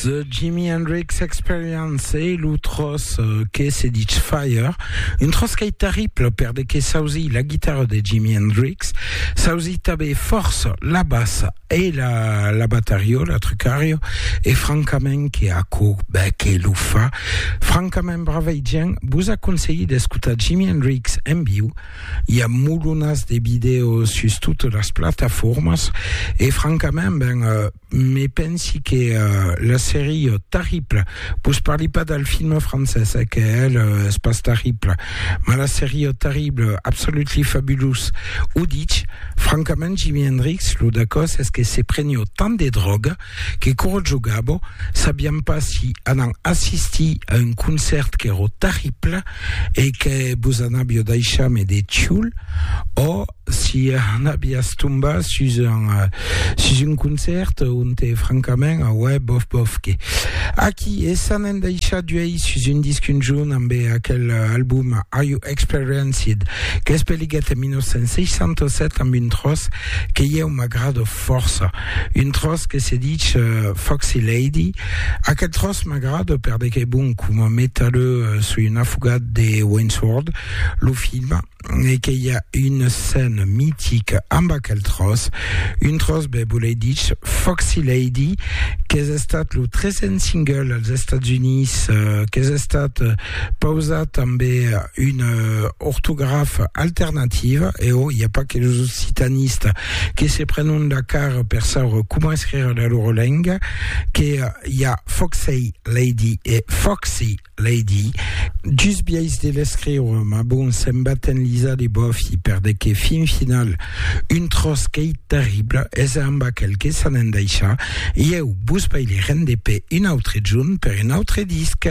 The Jimi Hendrix Experience e lo tros euh, que se dit Fire, un tros qu'ei terrible per de que sausi la guitarra de Jimi Hendrix, sausi tabé força la bassa Ei la la batario la trucario e francament que aquò bèth que lo fa francament bravei gent vos aconselhi d'escotar Jimi Hendrix en viu i a molonas de vidèo sus totes las plataformas e francament ben me pensi que la serie Tarriple vos parli pas del film francés eh que el es pas tarrible mas la serie Tarrible absolutely fabulous o ditz Francament Jimi Hendrix lo dacòs es que se prenió tant de dròga que quoro jogabo sabiam pas si anam assistir a un concèrt quero terrible e que vos anabio daishar me de tioul o si anabias tombar sus un sus un concèrt onte francament auè bof bof que aquí e s'anèn daishar d'uèi sus un disc un jorn ambe aquel album Are You Experienced, qu'es peliguèt en 1967 amb un tròç que ieu m'agrado fòrça, un tròç que se dich Foxy Lady, aquel tròç m'agrado per de qu'es bon coma metalheu soi un afogat de Wayne's World, lo film, e que i a una scène mitica amb aquel tròç, un tròç be volei dich Foxy Lady, qu'es estat lo tresen single als Estats Units, qu'es estat Pausa tanbe una ortografa alternativa, e ò, i a pas que los occitanistas que se prenon la cara per saure coma escrire la loro lenga, que i a Foxey Lady e Foxy Lady. Just biais de l'escriure, mas bon, se'n baten lisa de bòfi, per de que, fin final, un tròç qu'ei terrible, es amb aquel que s'an endaisha, ieu vos paileren de pe un autre junt per un autre disc.